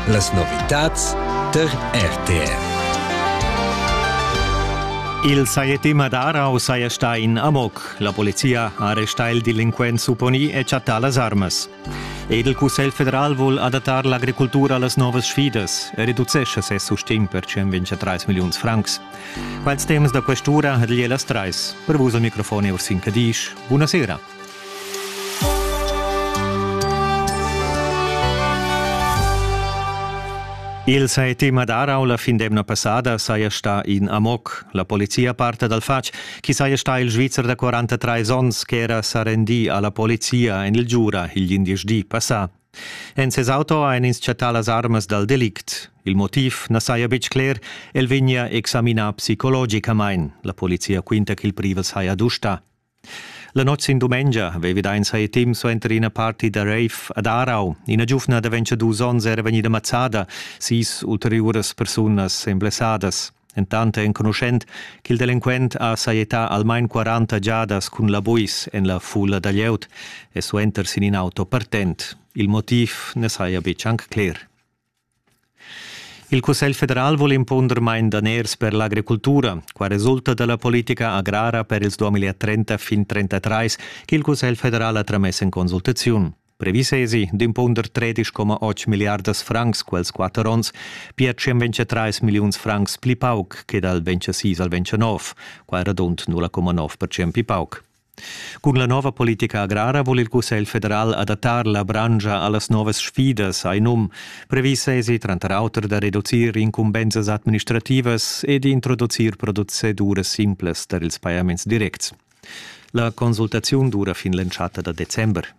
Las novitads tar RTR. Il Sajetim ad Arau saja stà in amok. La polizia ha arrestà il delinquent supponì e chattà las armas. Ed il Cussegl federal vul adattar l'agricultura a las novas sfidas e reducescha ses sustegn per 123 milliuns francs. Quels temas da questura ha lieu las trais. Per vus al microfon è Ursin Cadisch. Buonasera. Il sai tema darau la fin d'emna passada saja sta in amoc. La polizia parta dal fatg chi saja sta il Svizzer da 43 ons che era sa rendi alla polizia en il Giura il 11 di passà. En ses auto ein ins chattà las armas dal delict. Il motiv na saja betg cler, el vegnia examinà psicologicamain. La polizia quinta ch'il privel saja dusta. La notg sin dumengia vevi da ins hai temp suenter ina party da rave ad Aarau. Ina giuvna da ventadus onns era vegnida mazzada, sis ulteriuras persunas èn blessadas. Entant è enconuschent ch'il delinquent ha sajettà almain 40 giadas cun la buis en la fulla da glieud e suenter sin in auto partent. Il motiv na saja betg anc cler. Il Cussegl federal vul impunder main daners per l'agricultura. Qua resulta da la politica agrara per ils 2030 fin 2033 ch'il Cussegl federal ha tramess en consultaziun. Previs esi d'impunder 13,8 miliardas francs quels quatter onns, pia 123 milliuns francs pli pauc che dal 26 al 29, qua radund 0,9 percent pli pauc. Cun la nova politica agrara vul il Cussegl federal adattar la branscha a las novas sfidas, hai num. Previs èsi tranter auter da reducir incumbensas administrativas e d'introducir proceduras simplas tar ils pajaments directs. La consultaziun dura fin l'entschatta da december.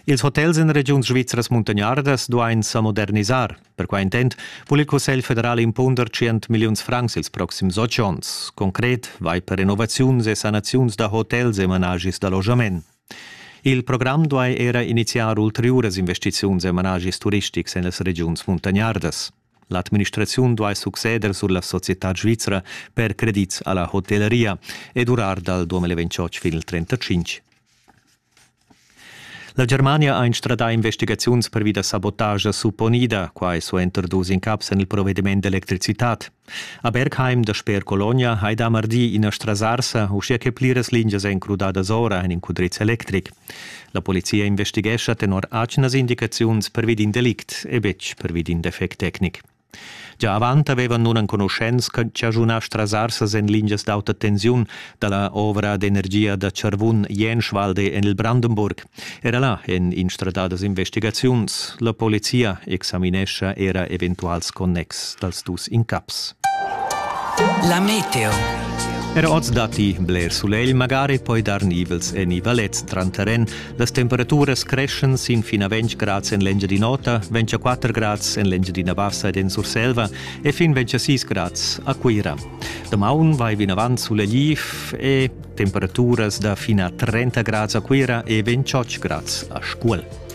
Ils hotels en regiuns svizras muntagnardas duain sa modernisar. Per quai intent vul il Cussegl federal impunder 100 milliuns francs ils proxims otg onns. Concret vai per renovaziuns e sanaziuns da hotels e managis d'allogament. Il program duai era iniziar ulteriuras investiziuns e managis turistics en las regiuns muntagnardas. L'administraziun duai succeder sur la societad svizra per credits a la hotelleria e durar dal 2028 fin il 35. La Germania ha instradà investigaziuns pervi da sabotagia supponida, quai suenter dus incaps en il provediment d'electricitad. A Bergheim, dasper Colonia, hai dà mardi ina strasarsa, uschia che pliras lingias èn crudadas ora en in cudriz electric. La polizia investighescha tenor atgnas indicaziuns pervi d'in delict e betg pervi d'in defect tecnic. Gia avant avevan nunenconuschents chaschunà strasarsas en lingias d'auta tensiun da la ovra d'energia da Charvun Jenschwalde en il Brandenburg. Era là èn instradadas investigaziuns. La polizia examinescha era eventuals connexs. dals dus incaps. La meteo. Er oz datti bler sulegl, magari poi dar nivels en i valets tranteren. Las temperaturas creschan sin fin a 20 grads en l'Engiadin'Ota, 24 grads en l'Engiadina Bassa ed en Surselva e fin 26 grads a Cuira. Damaun vai vinavant sulegliv e temperaturas da fin a 30 grads a Cuira e 28 grads a Scuol.